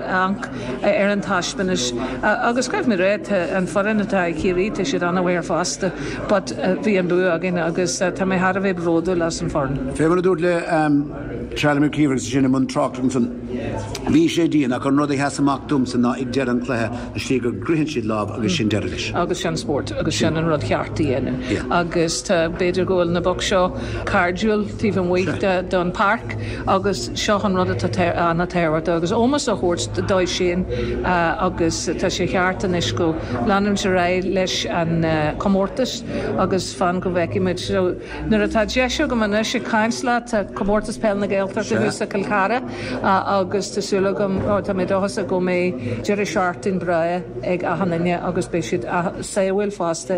amharc ar an taispeántas. Agus go raibh na Reidhe, an foireann atá ag Ciarraí, tá siad an-mhaith fosta, but bhí an bua againn agus tá mé thar a bheith bródúil as an foireann. Fé mar a dúrt le Charlie McGeever agus sinn i mbun tráchta ansan, bhí sé dian ach an rud a sheas amach domsa ná ag deireadh an chluiche an slí go gcroitheann siad lámh agus sin deireadh leis. Agus sin spórt agus sin an rud cheart a dhéanamh agus tá, b'fhéidir go bhfuil na boic seo cairdiúil taobh amuigh den páirc, agus seo an rud atá an-tábhachtach, agus ómós á thabhairt dóibh sin agus tá sé cheart anois go leanfaimis ar aghaidh leis an chomórtas agus fan go bhfeicfidh muid. So nuair atá deis agam anois ag caint leat, tá Comórtas Peil na Gaeltachta thuas i gCill Chartha agus tá súil agam, ó tá mé dóchasach go mbeidh deireadh seachtaine breá ag achan duine agus beidh siad sábháilte fosta.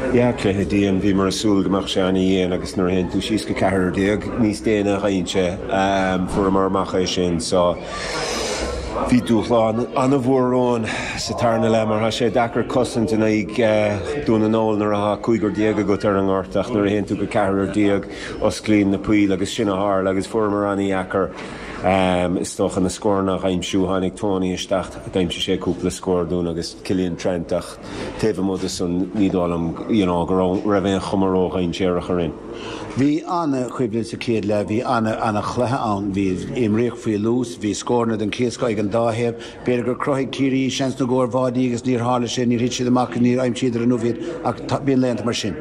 Dhá chluiche dian, bhíomar ag súil go mbeadh sé an-dhian agus nuair a théann tú síos go ceathrar déag níos déine a gheibheann sé. Fuaireamar amach é sin so bhí dúshlán an-mhór romhainn sa tarna leath mar tá sé deacair cosaint in aghaidh Dún na nGall nuair atá cúigear déag agat ar an ngort ach nuair a théann tú go ceathrar déag osclaíonn na poill agus sin a tharla agus fuaireamar an-dheacair is dócha na scóranna a aimsiú. Tháinig Tony isteach, d'aimsigh sé cúpla scór dúinn agus Cillian Trant ach. taobh amuigh de san ní dóigh liom you know go raibh raibh aon chuma ró-dhainséarach orainn. Bhí an-choimhlint sa chéad leath, bhí an-chluiche ann, bhí imríodh faoi luas, bhí scóranna den chéad scoth ag an dá thaobh. B'fhéidir gur chruthaigh Ciarraí seansanna i gcomhair báidí agus níor tharla sé, níor thit siad amach, níor aimsíodar inniu iad ach bíonn laethanta mar sin.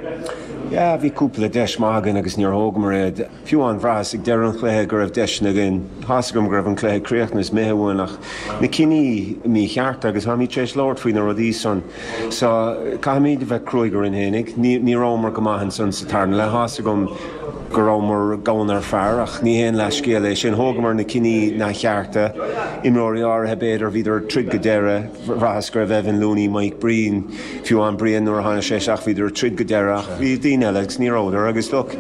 Yeah bhí cúpla deis maith againn agus níor thógamar iad. Fiú amháin, bhraitheas ag deireadh an chluiche go raibh deiseanna againn. Tá's agam go raibh an cluiche críochnaithe is imithe uainn ach na cinní míchearta agus táimid tar éis labhairt faoi na rudaí san so caithfimid a bheith cruaidh orainn féinig. Ní rabhamar go maith ansan sa tarna leath. Tá's agam go rabhamar gann ar fear ach ní haon leathscéal é sin. Thógamar na cinní neamhchearta. Imreoirí áirithe, b'fhéidir, bhíodar ag troid go deireadh. Bhraitheas go raibh Evan Looney, Mike Breen, fiú amháin Brian nuair a tháinig sé isteach, bhíodar ag troid go deireadh ach bhí daoine eile agus ní rabhadar agus look,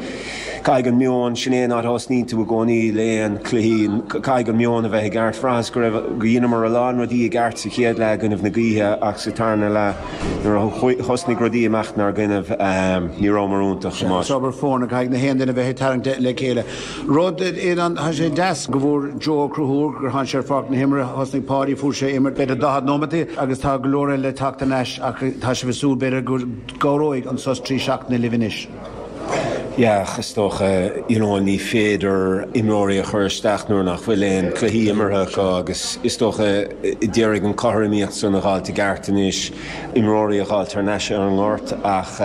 caithfidh an meon, sin é an áit a thosnaíonn tú i gcónaí, le haon cluichí, caithfidh an meon a bheith i gceart. Bhraitheas go raibh, go dheineamar a lán rudaí i gceart sa chéad leath i gcoinnibh na gaoithe ach sa tarna leath nuair a thosnaigh rudaí ag imeacht 'nár gcoinnibh, ní rabhamar iontach, chomh maith. Is obair foirne, caithfidh gach aon duine bheith ag tarraingt le chéile. Rud amháin, tá sé deas go bhfuair Joe Ó Conchúir gur tháinig sé ar pháirc na himeartha, thosnaigh Páidí, fuair sé imirt b'fhéidir daichead nóiméad agus tá go leor eile le teacht thar n-ais ach tá sibh ag súil b'fhéidir go gcabhróidh an sos trí seachtaine libh anois. Yeah, is dócha, you know, ní féidir imreoirí a chur isteach nuair nach bhfuil aon cluichí imeartha acu agus is dócha, a d'iarraidh an cothromaíocht san a dh'fháilt i gceart anois. imreoirí a dh'fháilt thar n-ais ar an ngort ach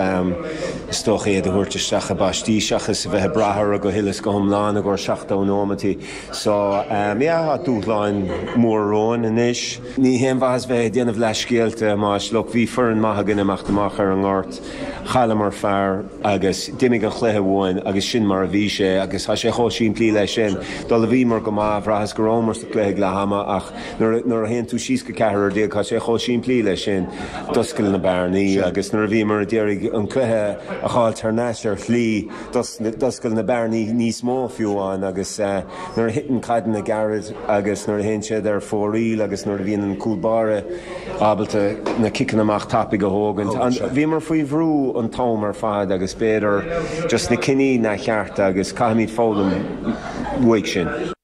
is dócha iad a thabhairt isteach i bpaistí seachas a bheith ag brath orthu go huile is go hiomlán i gcomhair 70 nóimeataí. So, yeah, tá dúshláin mhóra romhainn anois. Ní haon mhaitheas bheith ag déanamh leathscéalta más, look, bhí foireann maith againn ag imeacht amach ar an ngort, chailleamar fear agus d'imigh an chluiche uainn agus sin mar a bhí sé agus tá sé chomh simplí leis sin. Do bhíomar go maith, bhraitheas go rabhamar sa chluiche ag leath ama ach, Nuair a théann tú síos go ceathrar déag, tá sé chomh simplí leis sin. D'oscail na bearnaí agus nuair a bhíomar a d'iarraidh an cluiche a dh'fháilt thar n-ais ar shlí, d'oscail na bearnaí níos mó fiú amháin agus nuair a thiteann caideanna gairid agus nuair a théann siad ar fóraoil agus nuair a bhíonn an cúl báire ábalta na ciceanna amach tapaidh a thógaint, bhíomar faoi bhrú an t-am ar fad agus b'fhéidir just na cinní neamhchearta agus caithfimid foghlaim uaidh sin.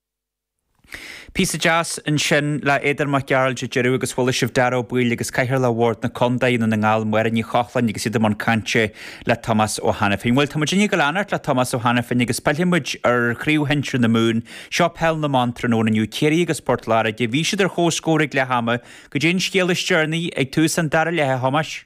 Píosa deas ansin le Aodán Mac Gearailt ag deireadh agus chuala sibh Dáire Ó Baoill agus Cathaoirleach Bhord na Contae, i nDún na nGall, Máire Ní Chochláin agus iad i mbun cainte le Tomás Ó hAiniféin. Bhuel, tá muidinne ag gabháil a leanacht le Tomás Ó hAiniféin agus pillfidh muid ar Chraobh Shinsear na Mumhan. Seo Peil na mBan tráthnóna inniu, Ciarraí agus Port Láirge. Bhí siad ar chomhscór ag leath ama goidé an scéal is deireanaí ag tús an dara leithe, a Thomáis.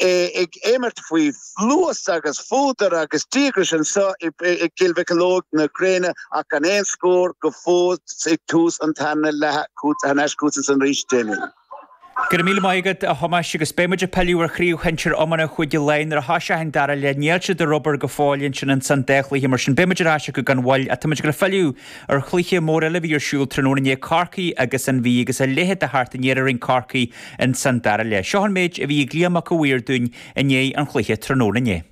é ag imirt faoi luas agus fuadar agus díograis anseo i gCill Mocheallóg na gréine ach gan aon scór go fóill ag tús an tarna leatha thar n-ais chugat ansan arís, Damien. Go raibh míle maith agat, a Thomáis, agus beidh muid ag pilleadh ar chraobh shinsir iomána Chúige Laighean nuair a thosaíonn an dara leath. Níl siad ar obair go fóill ansin insan dá chluiche, mar sin beidh muid ar ais acu gan mhoill, ach tá muid ag filleadh Ar chluiche mór eile a bhí ar siúl tráthnóna inné, Corcaigh agus an Mhí, agus a leithéid de theacht aniar a rinne Corcaigh in san dara leath. Seo an méid a bhí ag Liam Mac a' Mhaoir dúinn i ndiaidh an chluiche tráthnóna inné.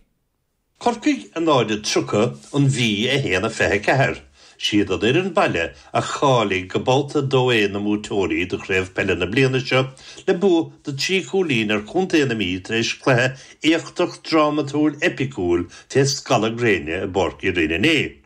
Corcaigh a 0 a 30 an Mhí 1 a 24. Siad an fhoireann baile a cháiligh go babhta 2A na mbuaiteoirí de chraobh peile na bliana seo le bua de thrí chúilín ar chontae na Mí tar éis cluiche éachtach drámatúil eipiciúil fé scalladh gréine i bPáirc Uí Rinn inniu.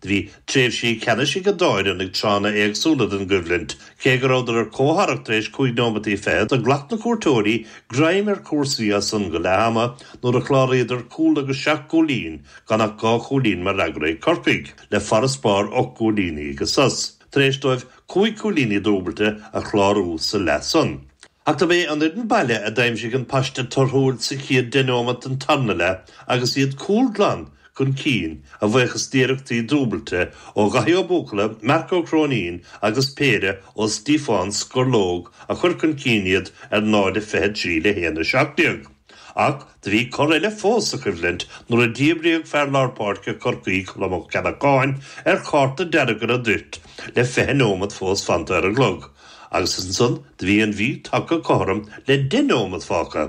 Do bhí tréimhsí ceannais ag an dá fhoireann ag tráthanna éagsúla den gcoimhlint. Cé go rabhadar ar comhtharrac tar éis cúig nóimeataí fichead, do ghlac na cuairteoirí greim ar cúrsaí as san go leath ama nuair a chláraíodar cúl agus seacht gcúilín, gan ach dhá chúilín mar fhreagra ag Corcaigh, le farasbarr ocht gcúilíní ag an sos, tar éis dóibh cúig cúilíní dúbailte a chlárú sa leath san. Ach dob é an fhoireann baile a d'aimsigh an paiste torthúil sa chéad deich nóimeat den tarna leath agus iad cúl glan chun cinn, a bhuíochas d'iarrachtaí dúbailte ó Dhaithí Ó Buachalla, Mark Ó Cróinín agus péire ó Stiofán Scurlóg a chuir chun cinn iad ar 0-23 le 1-17. Ach do bhí cor eile fós sa choimhlint nuair a díbríodh fear lár páirce Chorcaí, Colm Ó Ceallacháin, ar chárta dearg ar an dtoirt le fiche nóimeat fós fanta ar an gclog agus ansan do bhí an Mhí tagtha cothrom le deich nóimeat fágtha.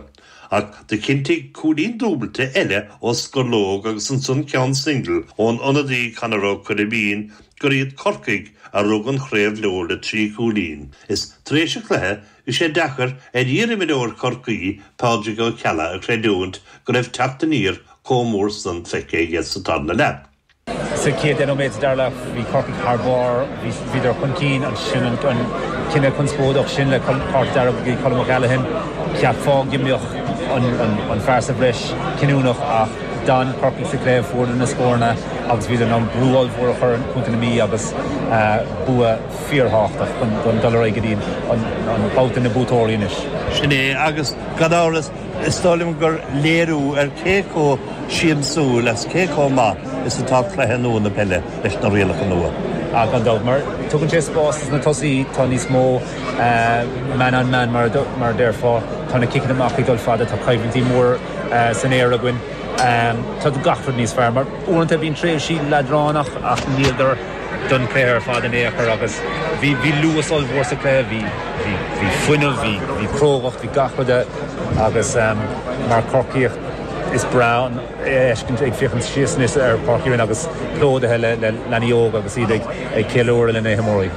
Ach do chinntigh cúilín dúbailte eile ó Scurlóg agus ansan ceann singil ón ionadaí Conor Ó Coirbín gur iad Corcaigh a rug an chraobh leo le trí chúilín is tar éis an chluiche Bhí sé deacair ar iarimreoir Chorcaí Pádraig Ó Ceallaigh a chreidiúint go raibh teacht aniar chomh mór san feicthe aige sa tarna leath. Sa chéad deich nóiméad sa dara leath, bhí Corcaigh thar barr, bhíodar chun cinn. Ansin an cinneadh conspóideach sin le cárta dearg ag Colm O'Callaghan, cheapfá go mbeadh an fear sa bhreis cinniúnach ach d'fhan Corcaigh sa chluiche, fuaireadar na scóranna agus bhíodar in ann brú ollmhór a chur ar Chontae na Mí agus bua fíorthábhachtach chun dul ar aghaidh go dtí an babhta na buaiteoirí anois. Sin é, agus gan amhras, is dóigh liom gur léiriú ar cé chomh siamsúil agus cé chomh maith is atá cluiche nua na peile leis na rialacha nua. Ah, gan dabht, mar tugann sé spás dos na tosaithe, tá níos mó man on man mar a déarfá, tá na ciceanna amach ag dul fada, tá coimhlintí móra san aer againn, tá gach rud níos fearr. Mar uaireanta bíonn tréimhsí leadránach ach ní gar don chluiche ar fad in aon chor agus bhí bhí luas ollmhór sa chluiche, bhí bhí bhí fuinneamh, bhí bhí crógacht, bhí gach rud a agus ehm mar Corcaíoch is breá an fheiscint ag féachaint síos anois ar Pháirc Uí Rinn agus plódaithe le le leanaí óga agus iad ag ag ceiliúradh le na himreoirí.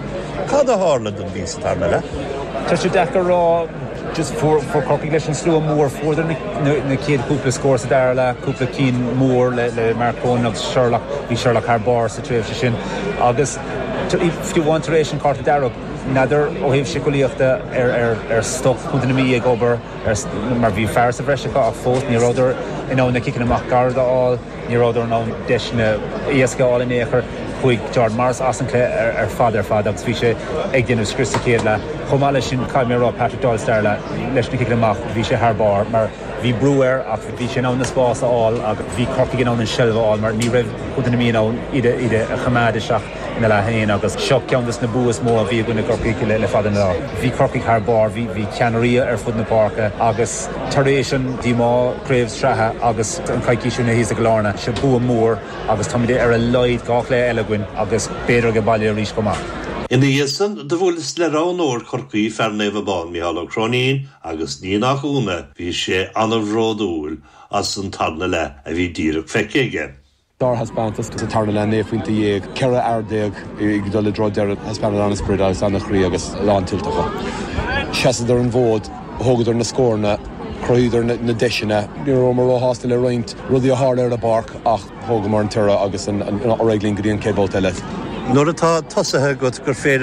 Cad a tharla don Mhí sa tarna leath? Tá sé deacair a rá. Fuair Corcaigh leis an slua mór, fuaireadar na chéad chúpla scór sa dara leath, cúpla cinn mór le Mark Cronin agus Sherlock, bhí Sherlock thar barr sa tréimhse sin agus fiú amháin tar éis an chárta dearg. N'fheadar ó thaobh siceolaíochta ar stop Contae na Mí ag obair mar bhí fear sa bhreis acu ach fós ní rabhadar in ann na ciceanna amach gairid a fháil. Ní rabhadar in ann deiseanna éasca a fháil in aon chor. Chuaigh Jordan Morris as an cluiche ar fad ar fad agus bhí sé ag déanamh scrios sa chéad leath. Chomh maith leis sin, caithfidh mé a rá, Patrick Doyle, stair leis na ciceanna amach, bhí sé thar barr mar bhí brú air ach bhí sé in ann na spás a fháil agus bhí Corcaigh in ann an seilbh a fháil mar ní raibh Contae na Mí in ann iad a choimeád isteach. ina leath féin agus seo ceann des na bua is mó a bhí againn i gCorcaigh le fada an lá. Bhí Corcaigh thar barr, bhí ceannairí ar fud na páirce agus tar éis an díomá craobh sraithe agus an coicís ó shin thíos i gCill Airne, seo bua mór agus táimid ar a laghad dhá chluiche eile againn agus b'fhéidir ag an baile arís chomh maith. Ina dhiaidh san do bhuaileas le roghnóir Chorcaí, fear Naomh Abán, Micheál Ó Cróinín agus ní nach ionadh bhí sé ana bhródúil as an tarna leath a bhí díreach feicthe aige. sárthaispeántas sa tarna leath, 19 phointe, 14 fhear ag dul i dtreo deireadh, thaispeánadar an-sprid agus an-chroí agus lán tuillte acu. Sheasadar an fód, thógadar na scóranna, chruthaíodar na deiseanna. Ní rabhamar róshásta le roinnt rudaí a tharla ar an bpáirc ach thógamar an toradh agus ar aghaidh linn go dtí an chéad bhabhta eile. Nuair atá tosaithe agat gur féidir